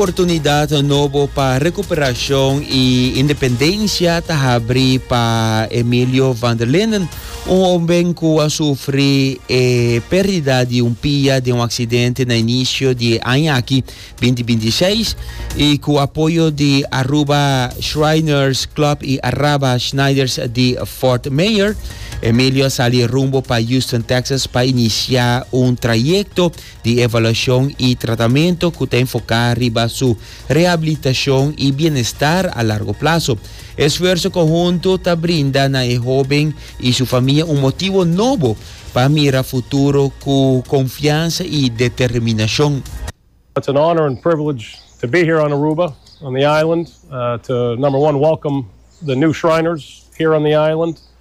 Oportunidat nobo pa recuperashon y independencia ta habri pa Emilio van der Linden, un homben cu a sufri e perdida di un pia den un accidente na inicio di e aña aki, binti binti seis, y cu apoyo di Aruba Shriners Club y Araba Schneiders di Fort Myer, Emilio a sali rumbo pa Houston, Texas pa inicia un trayecto di evaluashon i tratamento ku ta enfoká riba su rehabilitashon i bienestar a largo plaso. E sfuerso konhuntu ta brinda na e hóben i su famia un motibu nobo pa mira futuro ku konfiansa i determinashon. It's an honor and privilege to be here on Aruba, on the island, to number one welcome the new Shriners here on the island.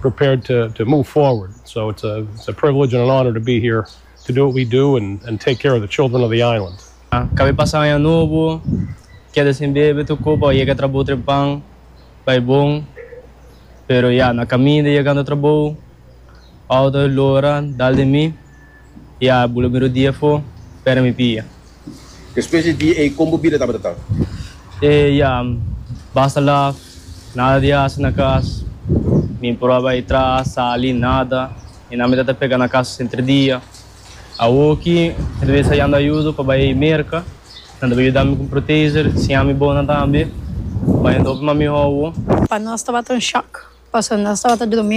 prepared to to move forward so it's a it's a privilege and an honor to be here to do what we do and and take care of the children of the island. Kabe pasa aña nobo, keda sin bebe tokó pa yega trabou trempan, bai bon, pero ya na kaminda yegando trabou, Aldo a lora dal de mi. Ya bu lo mira di afo, pera mi pia. Despues di dia ey con bo bida tabata ta? E ya am basta laf, nada di haci na cas, mi por a bay tra, sali, nada, mi nan mi ta ta pega na casa senter dia. Awo aki mi ta bes a yanda ayudo pa bay merca, nan ta bay yuda mi cu protezer, siña mi bonan tambe, bay un topi mas miho awo. Pa nos tabata un shock, pasobra nos tabata drumi.